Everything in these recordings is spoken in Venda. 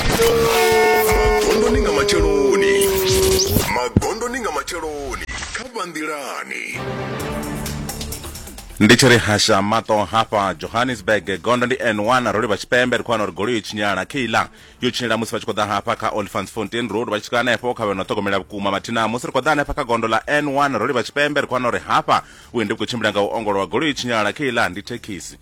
magondoni nga matsheloni magondoni nga matsheloni kha vha nḓilani ndi tshi ri hasha maṱo hafha johannesburg gondo ndi n1 ro livha tshipembe ri khou wana uri goloi yo tshinyala keilar yo tshinyala musi vha tshi khou ḓa hafha kha olifants fontain road vha tshi swika hanefho kha vheno ṱhogomela vhukuma mathina musi ri khou ḓa hanefha kha gondo ḽa n1 ro livha tshipembe ri khou wana uri hafha vhuendi vhu khou tshimbila nga u ongolowa goloi yo tshinyala keilar ndi thekhisi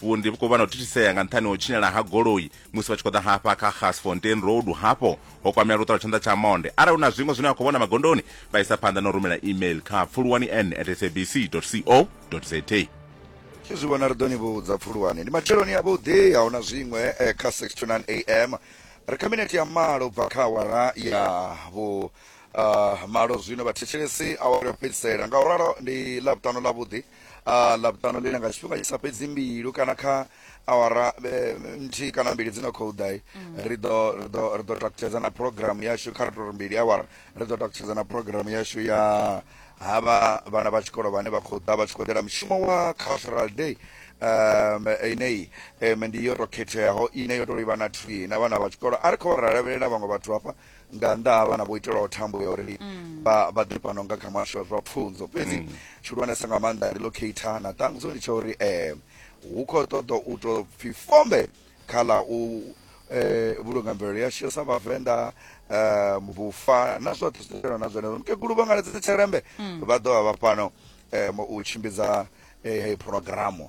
Vhundi vhu khou vha na u thithisea nga nṱhani ha u tshinyala ha goloi musi vha tshi khou ḓa hafha kha Gasfontein Road hafho ho kwamea luṱa lwa tshanḓa tsha monde. Arali hu na zwiṅwe zwine vha khou vhona magondoni, vha isa phanḓa na u rumela email kha pfuluwani n at sabc.co.za. Ni zwi vhona ri ḓo ni vhudza. Pfuluwani ndi matsheloni avhuḓi, a hu na zwiṅwe, eh, kha 6 to 9 am. Ri kha minete ya malo u bva kha awara ya vhu ah, malo zwino vhathetshelesi, awara ya u fhedzisela. Ngauralo ndi Ḽavhuṱanu ḽavhuḓi. a ḽavhuṱanu ḽine nga tshifhinga tshi sa fhedzi mbilu kana kha awara eh, nthihi kana mbili dzi no khou ḓa mm. ri ḓo ri ḓo ri ḓo takutshedza na program yashu kha ri tori mbili awara ri ḓo takutshedza na program yashu ya havha vhana vha tshikolo vhane vha khou ḓa vha tshi khou ḓela mushumo wa cultural day um ineyi um ndi yo to khetheaho ine yo to livha na thwi na vhana vha tshikolo a ri khou lavhelela vhaṅwe vhathu hafha nga nnḓa ha vhana vho itelwaho thambo ya uri vha vha ḓe fhano nga kha muhasho wa zwa pfunzo fhedzi tshihulwanesa nga maanḓa ndi locator na ṱangudzo ndi tsha uri um hu khou ṱoḓa u tou pfi fombe kha ḽa u eh, vhulunga mvelelo yashu sa vhavenḓa um vhufa na zwoṱhe zwi ḓotelwa na zwenezwo mukegulu vho ngaledza tsherembe vha ḓo vha vha fhano um u tshimbidza eh, heyi phurogiramu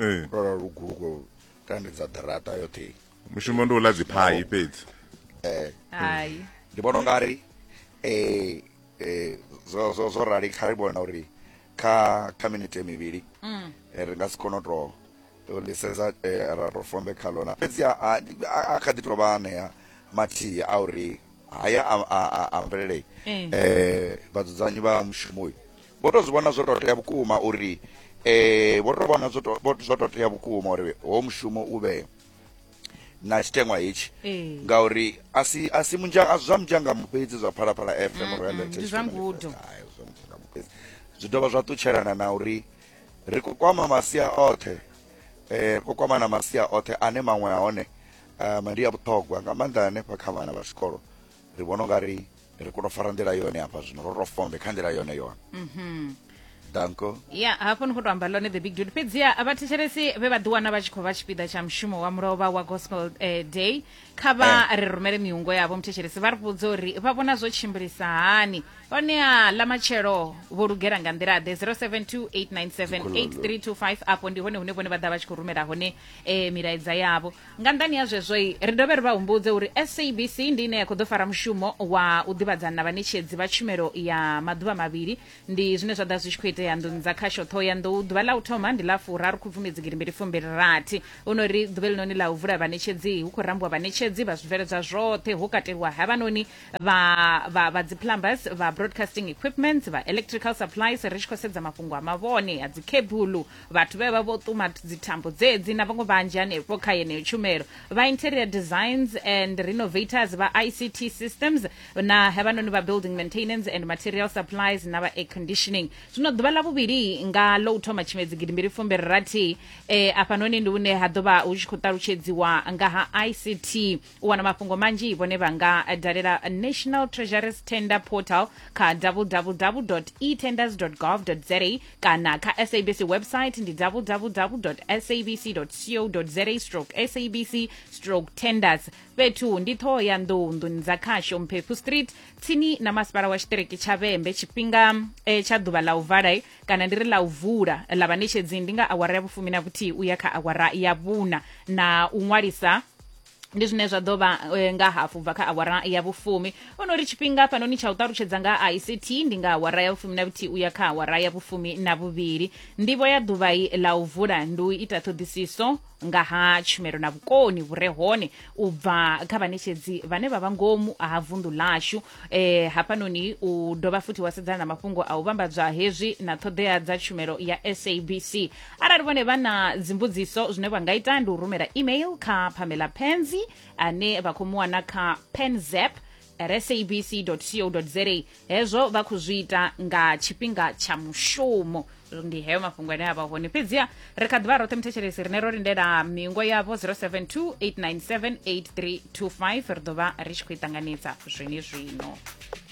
ee ndo lala lugulu ko tandedza ḓirata yoṱhe mushumo ndi u ḽa dziphai fhedzi eh hayi ndi vhona unga ri eh eh zwo zwo zwo rali kha ri vhona uri kha kha minete mivhili Mm. eh, ri nga si kone u to to lisedza eh, ra to fombe kha lona fhedzi a- a a- a kha ḓi tovha anea mathihi a uri haya a- a a- a mvelele Eh. eh vhadzudzanyi vha mushumo uyu Vho tou zwi vhona zwo tou tea vhukuma uri eh vho tou vhona zwo tou vho- zwo tou tea vhukuma uri ho mushumo u vhe na tshiteṅwa hetshi Ee. ngauri a si a si munzha a si zwa munzhangamu fhedzi zwa phalaphala fm royal ndi Heritage zwa Family ngudo. Fest. Hai, zwa munzhangamu fhedzi zwi dovha zwa ṱutshelana na uri ri khou kwama masia oṱhe eh ri khou kwama na masia oṱhe ane maṅwe a hone um, ndi a vhuṱhogwa nga maanḓa hanefha kha vhana vha tshikolo ri vhona ungari ri kone u fara nḓila yone hafha zwino ro ro fombe kha nḓila yone yone mhm. danko ya hafho ni khou tou amba ḽone the big dude fhedziha vhathetshelesi vhe vha ḓiwana vha tshi khou vha tshipiḓa tsha mushumo wa mulovha wa gospel eh, day kha vha eh. ri rumele miungo yavho muthetshelesi vha ri vhudza uri vha vhona zwo tshimbilisa hani honeha ḽa matshelo vho lugela nga nḓila ḓe 0728978325 afho ndi hone hune vhone vha ḓa vha tshi khou rumela hone eh, milaedza yavho nga nṱhani ha zwezwoi ri dovhe ri vha humbudze uri sabc ndi ine ya khou ḓo fara mushumo wa u ḓivhadzana na vhaṋetshedzi vha tshumelo ya maḓuvha mavhili ndi zwine zwa ḓa zwi tshi khou itea nḓuni dza khasho ṱhohoyanḓou ḓuvha ḽa u thoma ndi ḽa furaru khubvumedzi gidimbili fumbili rathi hu no ri ḓuvha eḽinoni ḽa u vula vhaṋetshedzi hu khou rambiwa vhaṋetshedzi vha zwibveledzwa zwoṱhe ho kateliwa havhanoni vha vha vha dzi plumbers vha broadcasting equipments vha electrical supplies ri tshi khou sedza mafhungo a mavhone a dzi khebulu vhathu vhe vha vho ṱuma dzithambo dzedzi na vhaṅwe vhanzhi hanefho kha yeneyo tshumelo vha interior designs and renovators vha ict systems na havhanoni vha building maintenance and material supplies na vha air conditioning zwino ḓuvha ḽa vhuvhili nga ḽo u thoma tshimedzi gidi mbili fumbiri rathi eh, afhanoni ndi hune ha ḓo vha hu tshi khou ṱalutshedziwa nga ha ict u wana mafhungo manzhi vhone vha nga dalela national treasuries tender portal kha www etenders gov za kana kha sabc website ndi www sabc co za stroke sabc stroke tenders fhethu ndi ṱhoho ya nḓou nḓuni dza khasho mphephu street tsini na masipala wa tshiṱiriki tsha vhembe tshifhinga eh, tsha ḓuvha ḽa u vala eh, kana ndi ri ḽa u vula ḽa vhaṋetshedzi ndi nga awara ya vhufumi na vhuthihi u ya kha awara ya vhuna na u ṅwalisa ndi zwine zwa ḓo vha eh, nga hafu bva kha awara ya vhufumi o no ri tshifhinga hafhanoni tsha u ṱalutshedza nga ha ict ndi nga awara ya vhufumi na vhuthihi u ya kha awara ya vhufumi na vhuvhili ndivho ya ḓuvhai ḽa u vula ndi u ita ṱhoḓisiso nga ha tshumelo na vhukoni vhu re hone u bva kha vhaṋetshedzi vhane vha vha ngomu ha vunḓu ḽashu eh, hafhanoni u dovha futhi wa sedzana na mafhungo a u vhambadzwa hezwi na ṱhoḓea dza tshumelo ya sabc arali vhone vha na dzimbudziso zwine vha nga ita ndi u rumela email kha pamela penzi ane vha khou mu wana kha penzep at sabc co za hezwo vha khou zwi ita nga tshifhinga tsha mushumo ndi heyo mafhungo ane a vha hone fhedziha ri kha ḓivha roṱhe muthetshelesi rine ro lindela mingo yavho 072 897 8325 ri ḓo vha ri tshi khou i ṱanganedza zwenezwino